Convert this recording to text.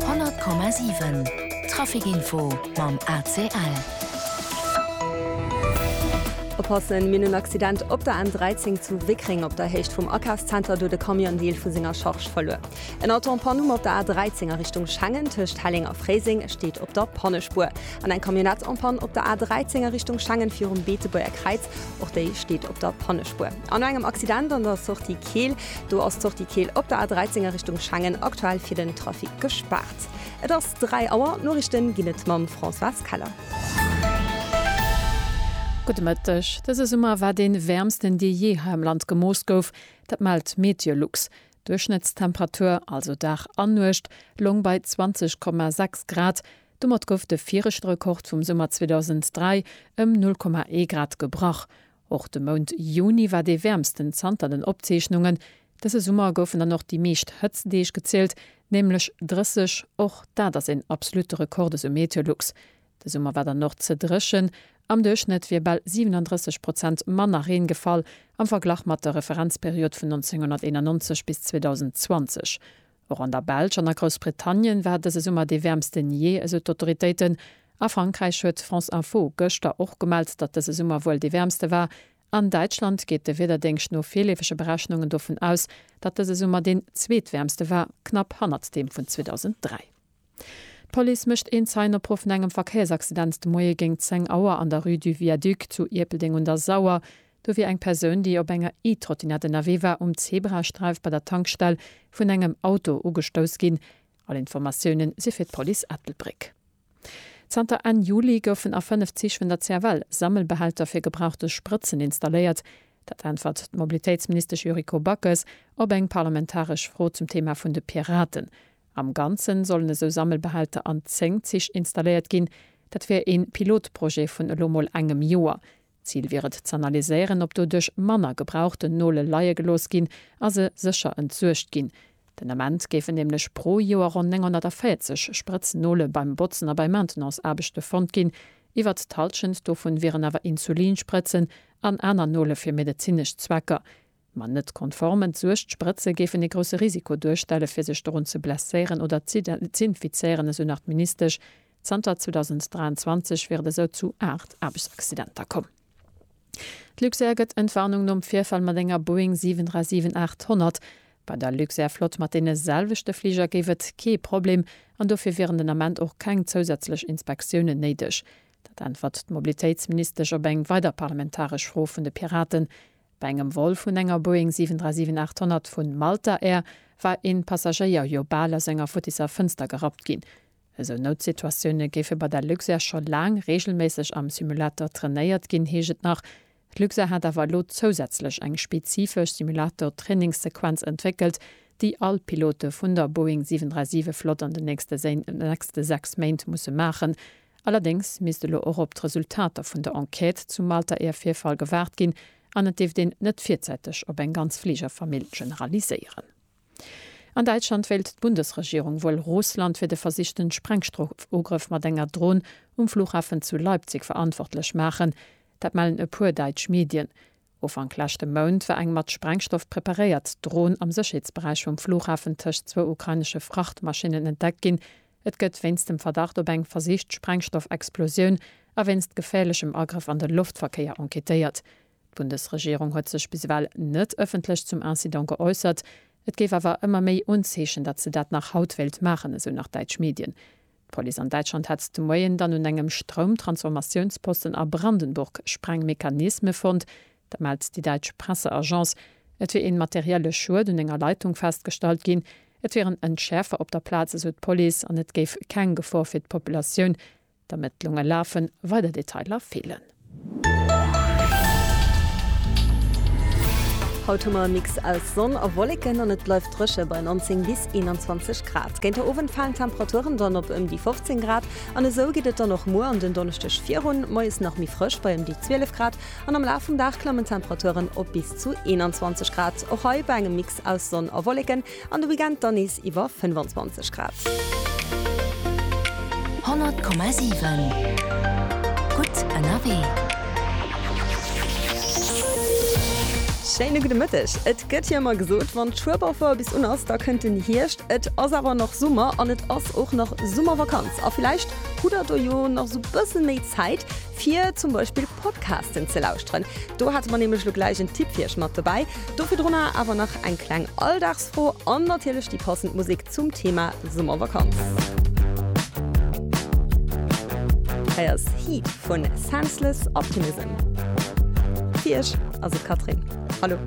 100,7 Trafic Info mam ACL. Oppassen, mir hunn en Accident op der N13 zu Wéckréng op der Héicht vum Akafszenter, do huet e Camion en Deel vu senger Charge verluer. En Auto en panne um op der A13 a Richtung Schengen, tëscht Helleng a Fréiseng, steet op der Pannespuer. An eng Camionnette en panne op der A13 a Richtung Schengen, virum Beetebuerger Kräiz, och déi steet op der Pannespuer. An no engem Accident an der Sortie Keel, Do ass d'Sortie Keel op der A13 a Richtung Schengen aktuell fir den Trafic gespaart. Et ass 3 Auer, d'Noriichte ginn et mam Françoise Keller. Gudde Mëtteg, Dëse Summer war dee wäermsten, dee jee hei am Land gemooss gouf. Dat mellt d'Meteolux. D'Duerchschnëttstemperatur, also Dag an Nuecht, loung bei 20,6 Grad. Domat gouf de viregte Rekord vum Summer 2003 ëm 0,1 Grad gebrach. Och de Mount Juni war dee wäermsten zanter den Opzeechnungen. Dëse Summer goufen dann och déi meescht Hëtztdeeg gezielt, nämlech 30, och dat ass een absolutte Rekord, esou Meteolux. De Summer war dann och ze dréchen, am Duerchschnëtt wier bal 37 Prozent manner Reen gefall am Verglach mat der Referenzperiod vun 1991 bis 2020. Och an der Belsch an a Groussbritannien war dëse Summer dee wäermsten jee, esou d'Autoritéiten. A Frankräich huet France Info gëschter och gemellt, datt dëse Summer wuel dee wäermste war. An Däitschland geet de Wiederdéngscht no virleefege Berechnungen dovun aus, datt dëse Summer deen zweetwäermste war, knapp hannert deem vun 2003. D'Police mécht een Zeienopruf no engem Verkéiersaccident de Moie géint 10 Auer an der Rue du Viaduc zu Ierpeldeng un der Sauer. Do wier eng Persoun, déi op enger E-Trottinett ënnerwee war, um Zebrasträif bei der Tankstell vun engem Auto ugestouss ginn. All Informatioune si fir d'Police Ettelbréck. Zanter Enn Juli goufen a 5 Zich vun der CFL Sammelbehälter fir gebrauchte Sprëtzen installéiert. Dat äntwert d'Mobilitéitsministesch Yuriko Backes op eng parlamentaresch Fro zum Theema vun de Piraten. Am Ganzen sollen esou Sammelbehälter an 10 Zich installéiert ginn. Dat wär ee Pilotprojet vun elo mol engem Joer. Zil wier et z'analyséieren, ob doduerch manner gebrauchten Nole leie gelooss ginn a se sécher entsuergt ginn. Den Ament géifen nämlech pro Joer ronn 940 sprëtz Nole beim Botzen a bei Maintenance-Aarbechte fonnt ginn. Iwwert d'Hallschent dovun wieren awer Insulinsprëtzen an aner Nole fir medezinesch Zwecker. Ma net konformen d'Suecht-Sprëtze géifen ee grousse Risiko duerstelle fir sech dorun ze blesséieren oder z'infizéieren, esou nach d'Ministesch. Zanter 2023 wier et esou zu 8 Aarbechtsaccidenter komm. D'Luxair gëtt Entwarnung nom Virfall mat enger Boeing 737-800. Bei der Luxair-Flott mat deene selwechte Fliger géif et kee Problem an dofir wieren den Ament och keng zousätzlech Inspektiounen néideg. Dat äntwert d'Mobilitéitsministesch op eng weider parlamentaresch Fro vun de Piraten. Bei engem Vol vun enger Boeing 737-800 vu Malta Air war een Passagéier jo bal aus enger futtisser Fënster gerappt ginn. Esou Noutsituatioune géife bei der Luxair scho laang reegelméisseg am Simulator trainéiert ginn, heescht et nach. D'Luxair hat awer elo zousätzlech eng spezifesch Simulator-Trainingssequenz entwéckelt, déi all Pilote vun der Boeing 737-Flott an den nächste 6 Méint musse maachen, Allerdéngs misst elo och op d'Resultater vun der Enquête zum Malter Air-Virfall gewaart ginn an et dierft een net virzäiteg op eng ganz Fligerfamill generaliséieren. An Däitschland wéilt d'Bundesregierung wuel Russland fir de versichten Sprengstrofugrëff mat enger Dron um Flughafen zu Leipzig verantwortlech maachen. Dat mellen e puer däitsch Medien. Ufank leschte Mount war eng mat Sprengstoff preparéiert Dron am Sécherheetsberäich vum Flughafen tëscht zwou ukrainesche Frachtmaschinnen entdeckt ginn. Et gëtt wéinst dem Verdacht op eng versicht Sprengstoffexplosioun a wéinst geféierlechem Agrëff an de Loftverkéier enquêtéiert. D'Bundesregierung huet sech bis ewell net ëffentlech zum Incident geäussert. Et géif awer ëmmer méi Unzeechen, datt se dat nach haut wéilt maachen, esou nach däitsch Medien. D'Police an Däitschland hat de Moien dann un engem Stroumtransformatiounsposten a Brandenburg Sprengmechanisme fonnt. Dat mellt déi däitsch Presseagence. Et wier ee materielle Schued un enger Leitung festgestallt ginn. Et wieren Entschäerfer op der Plaz, esou d'Police, an et géif keng Gefor fir d'Populatioun. D'Ermëttlunge lafen. Weider Detailer feelen. Haut hu mer e Mix aus Sonn a Wolleken an et bleift dréche bei 19 bis 21 Grad. Géint de Owend falen d'Temperaturen dann op ëm déi 15 Grad an esou geet et dann och muer an den Donneschdeg virun. Moies nach méi frësch bei ëm déi 12 Grad an am Laf vum Dag klammen d'Temperaturen op bis zu 21 Grad. Och hei bei engem Mix aus Sonn a Wolleken An de Weekend dann nees iwwer 25 Grad. 100,7 gutt ënnerwee. Schéine gudde Mëtteg. Et gëtt jo ëmmer gesot, wann d'Schueberfouer bis un ass, da kënnt den Hierscht. Et ass awer nach Summer an et ass och nach Summervakanz. A villäicht hutt der do jo nach esou bësse méi Zäit. fir zum Beispill Podcasten ze lauschteren. Do hate mer nämlech lo gläich en Tipp fir iech mat dobäi. Do virdrunner awer nach eng kleng Alldagsfro an natierlech déi passend Musek zum Thema Summervakanz. Hei ass Heat vun Senseless Optimism. Fir iech ass et Catherine. Hallo.